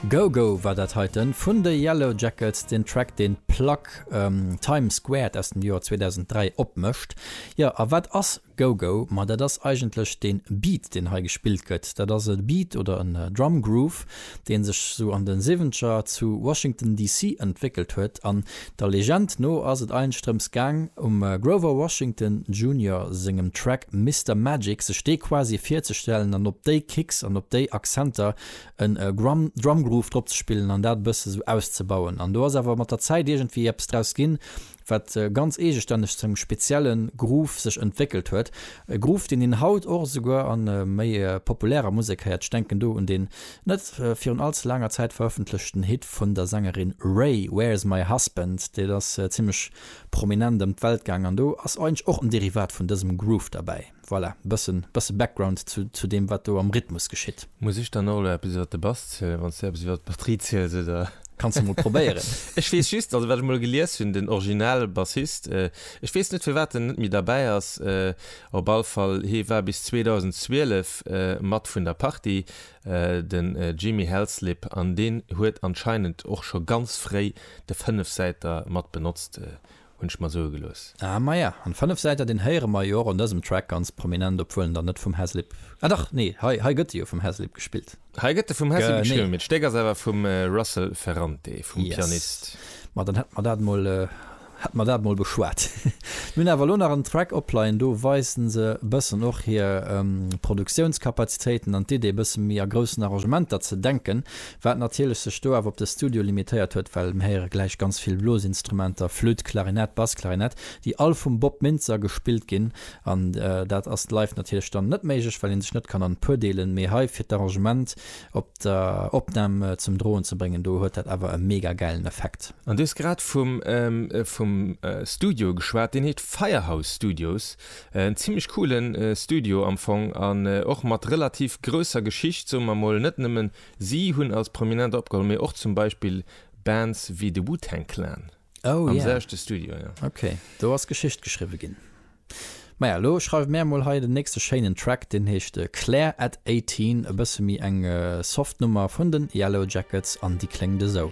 Go Go war dat heiten vun de Yellowjackets, den Track deen d'Plack Time Squared aus dem Joer 2003 opmécht. Jo a wat ass Go Go? Ma dat ass eigentlech dee Beat deen hei gespillt gëtt. Dat ass e Beat oder en Drum Groove deen sech sou an de Siwwenzeger zu Washington DC entwéckelt huet an Der Legend no ass et eigentlech drëms gaang, um Grover Washington Junior sengem Track Mister Magic sech dee quasi virzestellen an op déi Kicks an op déi Akzenter en Drumgroove drop ze spillen an dat e bësse sou auszebauen. An do ass awer mat der Zäit iergendwéi eppes draus ginn, wat ganz eegestänneg zu engem spezielle Groove sech entwéckelt huet. E Groove, deen een haut och esouguer a méi populärer Musek héiert, ech denken do un dee Net virun all ze laanger Zäit verëffentlechten Hit vun der Sängerin Raye, Where's My Husband? Dee ass zimmlech prominent ëm d'Welt gaang an do ass eigentlech och en Derivat vun dësem Groove derbäi. Voilà, bësse bësse Background zu zu deem wat do am Rhythmus geschitt. Muss ech dann och elo eppes iwwer de Bass zielen, wann s du eppes iwwer d'Batterie ziels, oder? Kanns du mol probéieren. Ech weess just, also wat ech mol gelies hunn, den original Bassist, ech weess net firwat en net méi derbäi ass, op all Fall hie war bis 2012 mat vun der Partie. den Jimmy Hellslip an deen huet anscheinend och scho ganz fréi de Fënnefsäiter mat benotzt, hunn ech mer soe gelooss. Ah maja, an Fënnefsäiter deen héiere mer jo och an dësem Track ganz prominent, obwuel en dann net vum Hellslip, ah dach nee hei hei gëtt e jo vum Hellslip gespillt. Hei gëtt e vum Hellslip gespillt, mee d'Stéck ass awer vum Russel Ferrante, vum Pianist. Yes, ma dann hätte mer dat mol. Haten mer dat mol beschwat. Mir hunn awer lo nach en Track opleien, do weisen se bëssen och hir Produktiounskapazitéiten an d'Idee bësse méi a groussen Arrangementer ze denken, wat natierlech sech do awer op de Studio limitéiert huet, well mir héiere gläich ganz vill Blosinstrumenter, Flütt, Klarinett, Bassklarinett, déi all vum Bob Mintzer gespillt ginn an dat ass live natierlech dann net méiglech, well ee sech net kann an d'Puer deelen, mee hei fir d'Arrangement op der Opnam zum droen ze bréngen, do huet dat awer e mega gäilen Effekt. An du hues grad vum vum Studio geschwat, deen heet Firehouse Studios. En zimmlech coole Studio am Fong an och mat relativ grousser Geschicht, soe mer mol. Net nëmmen si hunn als Prominent opgeholl, mee och zum Beispill Bands wéi de Wu-Tang Clan am selwechte Studio, jo. Ok, do ass Geschicht geschriwwe ginn. Maja, elo schreiwe mär mol hei den nächste schéinen Track, deen heescht Claire at Eighteen, e bësse méi eng soft Nummer vun den Yellow Jackets an déi kléngt esou.